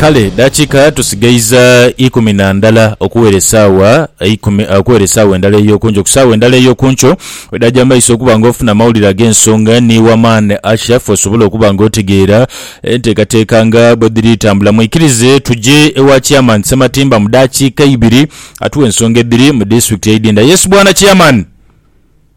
Kale dakiika tusigaiza ikumi na ndala okuwera esaawa eikumi, okuwera esaawa endala ey'oku nkyo. Ku saawa endala ey'oku nkyo wedaaja mu maiso okuba nga ofuna amawulire ag'ensonga ni wamaani Asha fe osobole okuba nga otegeera enteekateeka nga bwe dhiri tambula. Mwikirize tuje ewa Chairman Ssematimba mu dakiika ibiri atuwe ensonga edhiri mu Disitulikiti y'Idinda. Yes Bwana Chairman.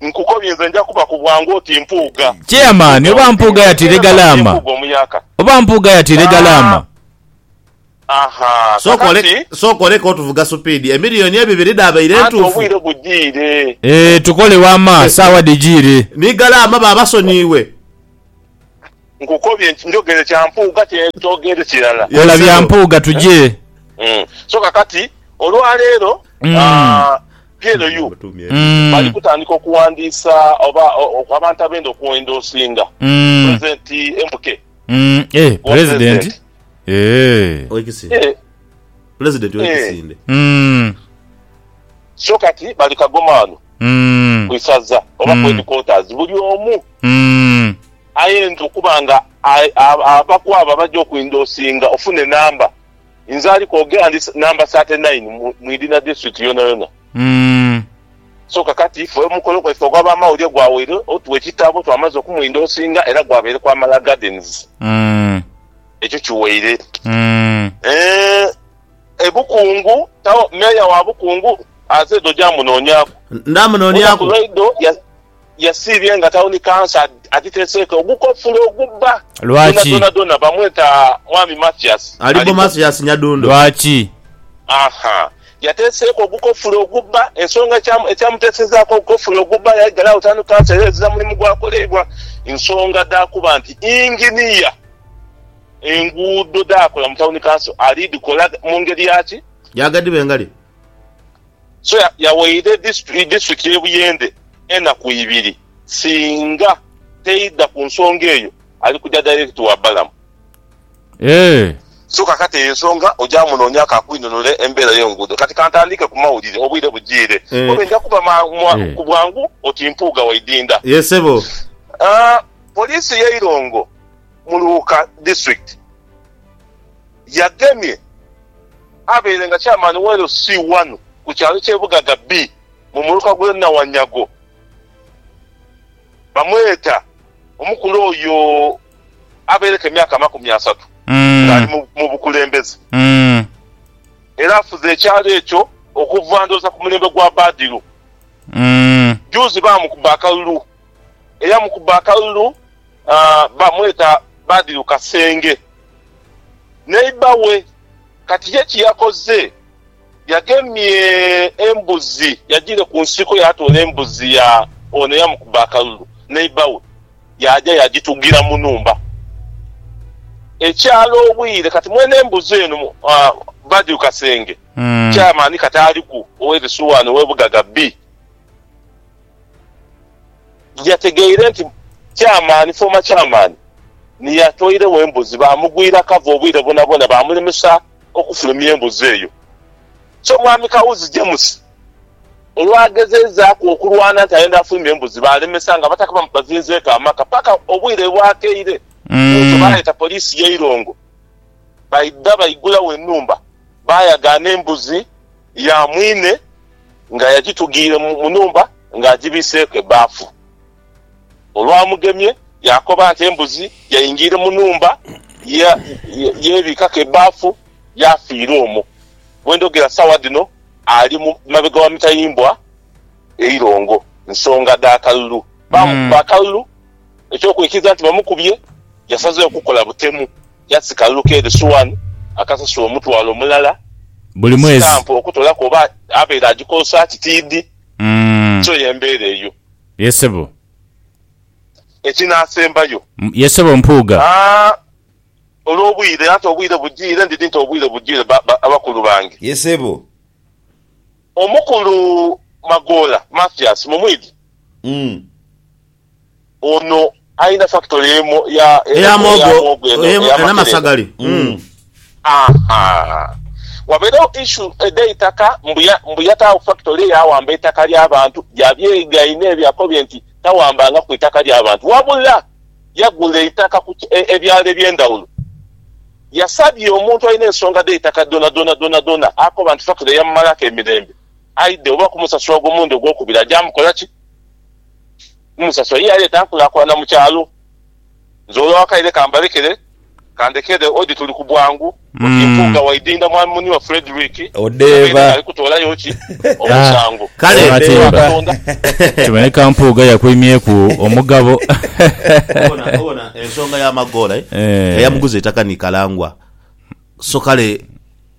Nkukobye nze nja kuba ku bwangu oti Mpuuga. Chairman oba Mpuuga yatiire galaama? Oba Mpuuga yatiire galaama? Sooka oleke otuvuga supiidi. Emiliyoni ebibiri dhaabaire ntuufu? Eeh tukole wama, saawa dhijiire. Ni galaama baabasonyiwe. Nkukobye nti njogere kya Mpuuga kyentoogere kirala. Kola bya Mpuuga tuje. Mm. So kakati olwaleero Mm. ah, PLU Mm. bali kutandika okuwandiisa oba o- o- abantu abenda okuendoosinga Mm. pulezidenti MK. Mm. Eh, Wa president. president. Eh. Owekisinde. Eh, President Eh. owekisinde. Mm. so kati bali kagomaano Mm. ku isaza oba Mm. ku headquarters buli omu Umm. Aye nze okuba nga abaku abo abaja okwindosinga ofune number nze ali kwogera ndi number thirty nine mu idina district yonayona. Umm. So kakati ife omukolo gwaife ogwa ba mawulire gwawaire otuwa ekitabo twamaze okumwindosinga era gwabaire kwa Mala Gardens. Umm. Ekyo kiwaire. Umm. Eeh e Bukungu town mayor wa Bukungu azed oja munonyaku. Nda munonyaku. Oja ku radio ya. yasiibye nga tawuni kansa adhiteseeko ogukofulo ogubba Lwaki? dhonadhonadhona bamweta Mwami Mathias Alibo Mathias Nyadundo. Lwaki? Aha. Yateseeko ogukofulo ogubba. Ensonga ekyamu ekyamutesezaaku ogukofulo ogubba yaigala agho tawuni kansa era ezira mulimu gwakoleibwa nsonga dha kuba nti yinginiya enguudo dhaakola mu tawuni kanso ali dhikola mu ngeri ya ki? Ya ghadibengali. So yawaire disitulikiti y'e Buyende enaku ibiri singa teidha ku nsonga eyo ali kuja direct wa Balamu. Eeh. So kakati eyo ensonga oja munoonya ako akwinunule embeera y'enguudo. Kati kantandiike ku mawulire obwire bujiire obe nja kuba ku bwangu oti Mpuuga wa Idinda. Ye ssebo. Poliisi y'e Irongo mu Luuka District. Yagemye abaire nga Chairman wa LC wano ku kyalo kye Bugaga B mu muluka gwe Nawanyago bamweta omukulu oyo abaireku emyaka amakumi asatu nga ali mu bukulembeze era afuze ekyalo ekyo okuva ndhooza ku mulembe gwa Badiru. Juuzi baamukuba akalulu Eyamukuba akalulu bamweta Badru Kasenge. Neiba we kati ye kye yakoze yagemye embuzi, yagiire ku nsiko yaatoola embuzi ya ono eyamukuba akalulu, neiba we yaaja yagitugira mu nhumba. Ekyala obwire kati mwene embuzi eno Badru Kasenge chairman kati aliku ow'e Risuwani ow'e Bugaga bii. Yategeire nti Chairman, former Chairman, ni yatoiregho embuzi, baamugwira cover obwire bwonabwona baamulemesa okufulumya embuzi eyo. So Mwami Kawuzi James olwagezeizaaku okulwana nti ayenda afulumye embuzi, baalemesa nga Abataka bazinzeeku amaka paka obwire bwakeire bwotyo baaleeta poliisi y'eirongo baidha baigulawo enhumba baayagaana embuzi. ya mwine nga yagitugiire mu nhumba ng'agibiiseeku ebbaafu. Olwamugemye yaakoba nti embuzi yaingiire mu nhumba yeebiikaku ebbaafu yaafiira omwo. Bwe ndhogera sawa dhino ali mabega wa mitayimbwa e Irongo nsonga dha kalulu. Baamukuba akalulu eky'okwikiriza nti bamukubye, yasazeewo kukola butemu. Yasika Luka eri Suwani akasasula omutwalo mulala. Buli mwezi. Sitampu okutolaku oba abaire agikozesa ki tiidhi. Kyo y'embeera eyo. Ye sebo. Ekinaasembayo. Ye sebo Mpuuga. Haa, olw'obwire, anti obwire bujiire. Ndidhi nti obwire bujiire ba, ba, abakulu bange. Ye sebo. Omukulu Magoola, Mathias, mumwidhi? Umm. Ono alina factory emu eya eya muwogo eno eyamakerenda ahaa waberewo issue edhe itaka mbu mbu yatawo factory yawamba eitaka lyabantu yabyegaina ebyo akobye nti tawambanga ku itaka lyabantu wabula yagula eitaka ku ebyalo ebyendawulo yasabye omuntu alina ensonga dheitaka dhona dhona dhona dhona akoba nti factory yamumalaku emirembe aidhe oba kumusasula ogwo mulundi ogwokubiri ajamukolaki Musasoyi yaleeta nkulakulana mu kyalo. Nze olwo akaire kambalekere, kandekere odi tuli ku bwangu oti Mpuuga Waidinda mwami muni wa Fredrick Odheeba. Kabeere ali kutoolayo ki omusango. Kale Katonda. Kiboneka Mpuuga yakwimyeku omugabo. Obona, obona ensonga ya Magoola eh? Eyamuguza eitaka ni Kalangwa. So kale.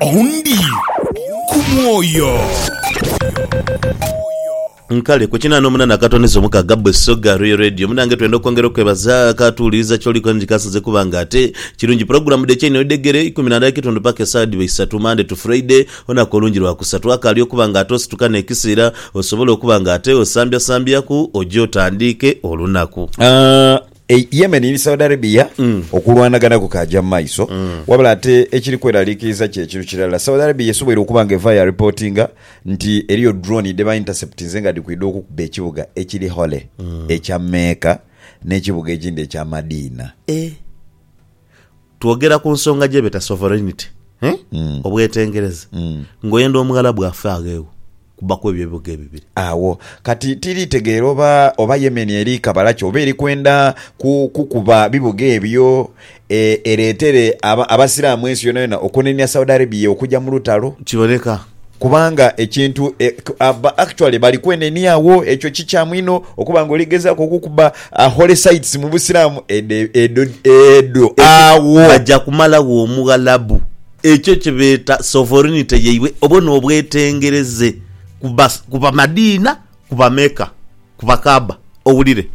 Ondi ku mwoyo. Nkale ku kinana omunana akatondeza omukaga bwe soga Royal Radio munange twenda okwongera okwebaza akatuwuliriza kyoli kola nti kasinze kuba nga ate kirungi pulogulamu dhe kyeino edhegere ikumi nandala ekitundu paka esawa dhiba isatu Monday to Friday olunaku olungi lwa kusatu akaali okuba nga ate osituka nekisiira osobole okuba nga ate osambyasambyaku oje otandiike olunaku. E Yemen ni Saudi Arabia okulwanagana kukaaja mu maiso, wabula ate ekiri kweraliikiriza kye kinu kirala. Saudi Arabia esoboire okuba nga evaayo yaripotinga nti eriyo drone dhe ba interceptinze nga dhikwidha okukuba ekibuga ekiri hole ekya Mecca n'ekibuga ekindi ekya Madina. Twogera ku nsonga gye beta sovereignty, eh? obwetengereza, ng'oyenda omughala bw'afa agheegho kubbaku ebyo ebibuga ebibiri. Agho kati tiri tegeera oba oba Yemen eri kabala ki oba eri kwenda ku kukuba bibuga ebyo e, ereetere aba, Abasiraamu ensi yonayona okunenia Saudi Arabia okugya mu lutalo. Kiboneka Kubanga ekintu e, ba actually bali kwenenia agho. Ekyo kikyamu inho okuba nga oligezaku okukuba a holy sites mu Busiraamu. Edho edho edho agho. Baja kumalagho Omughalabu. Ekyo kye beeta sovereignty yaibwe obwo n'obwetengereze ku ba, ku ba Madiina, ku ba Mecca, ku ba Kaaba. Owulire.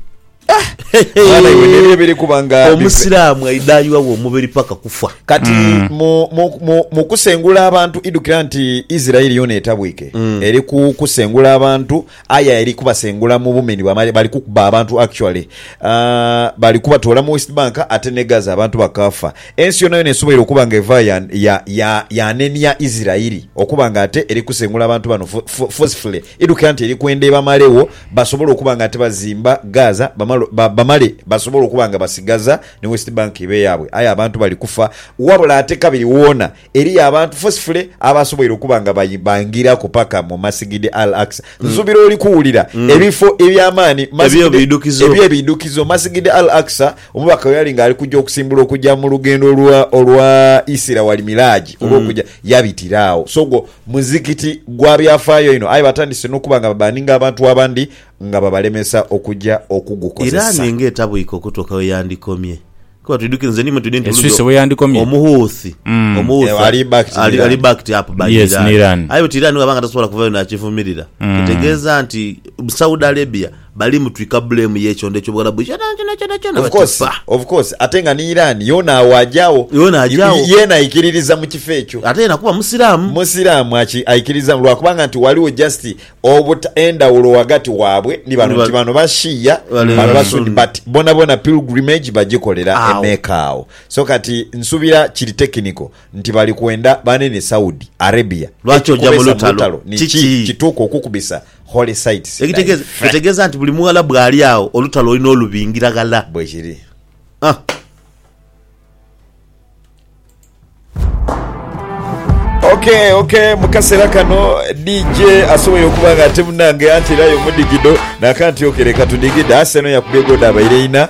Mwana iwe nebyo ebiri kuba nga bive. Omusiraamu aidha ayiwagho omubiri paka kufa. Kati mu, mu, mu, mu kusengula abantu, idhukira nti Isiraeli yoona etabwike. Eri ku kusengula abantu, aye eri kubasengula mu bumeni bwa male. Bali kukuba abantu actually. Ah, bali kubatoola mu West Bank ate ne Gaza abantu bakaafa. Ensi yoonayoona esoboire okuba nga eva ya, ya, ya, yanenia Isiraeli okuba nga ate eri kusengula abantu bano fo, fo, forcefully. Edhukira nti eri kwenda ebamalegho basobole okuba nga tibazimba Gaza bamale basobole okuba nga basigaza ni West Bank ebe yaabwe aye abantu bali kufa wabula ate kabiri woona eriyo abantu forcefully abasoboire okuba nga bangiraku paka mu Masigid Al-Aqsa. Nsubira oli kuwulira ebifo ebyamaani eby'ebidhukizo Masigid Al-Aqsa omubaka weyali nga ali kuja okusimbula okuja mu lugendo lwa Isira wal Miraj olw'okuja yabitira agho so gwo Muzikiti gwa byafaayo inho aye batandise n'okuba nga babaninga abantu abandi nga babalemesa okuja Iran okugukozesa. ng'etabwika okutuuka ghe yandikomye. Kuba twidhukire nze ni mwe twidhie nti Eswisi bulujo bwe yandikomye? Omuhuthi, Mm. Omuhuthi Eh, ali backed ni ali, Iran. ali backed up by Yes, ni Iran. Iran. Aye bwekiri Iran bwaba nga tasobola kuvayo nakivumirira, Mm. kitegeeza nti Saudi Arabia Bali mutwika blame yekyondo ekyobugharabu kyonakyona kyonakyona Of course, bakifa. of course. Ate nga ni Iran yoona agho agyagho. Yoona agyagho. Yeena aikiririza mu kifo ekyo. Ate yeena kuba musiraamu. Musiraamu aki, aikiriza lwakubanga nti ghaligho just obuta, endhawulo ghagati waabwe ni bano. Nti bano ba Shia, Bale bano ba ba Sunni. Sunni. But bonabona pilgrimage bagikolera e Agho. Mecca agho. So kati nsubira kiri technical nti bali kwenda banene Saudi Arabia. Lwaki oja mu Ekikubeesa lutalo? ni ki Kiki? kituuka okukubisa Holy sites thy Ekitegeza, faith. etegeza nti buli mughala bwali agho olutalo olina olubingira ghala. Bwekiri. Ah. Ok ok mukasera kano DJ asoboye okuba nga ate munange anti era yomudigido nakanti ok leka tudigide asenho yakubye goda abaire ina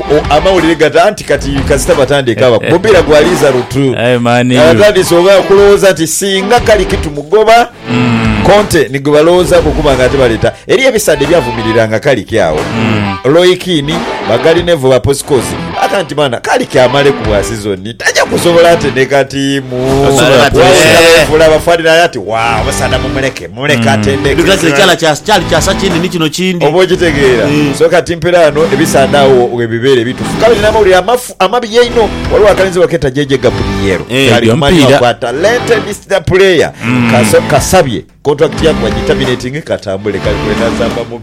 Amawulire gata nti kati kasita batandika aba mupiira gwa liiza lutu abatandise oba okulowooza nti singa kali kitu mugoba mm. Conte nigwe balowoozaku okuba nga ate baleeta eri ebisaadha ebyavumiriranga kaliki awo mm. Loikini bagalinevo baposikosi aka nti baana kaliki amale ku bwa sizoni tajja kusobola ateneka tiimu waula bafanira ati wa abasaadha mumuleke Muleke atendeke. Because ekyala kya kyali kyasa kindi ni kino kindi. Oba okitegeera. Eh. So kati mpera ghano ebisaadha agho webibeera ebitufu. Kale nina amawulire amafu amabi einho. Ghaligho akalinzi baketa JJ Gabriel. Eh. Kali Ebyo kumanhi mpiira. wakwa talented star player. Kaso kasabye contract ya kubagitaminating katambule kali kwenazamba mu.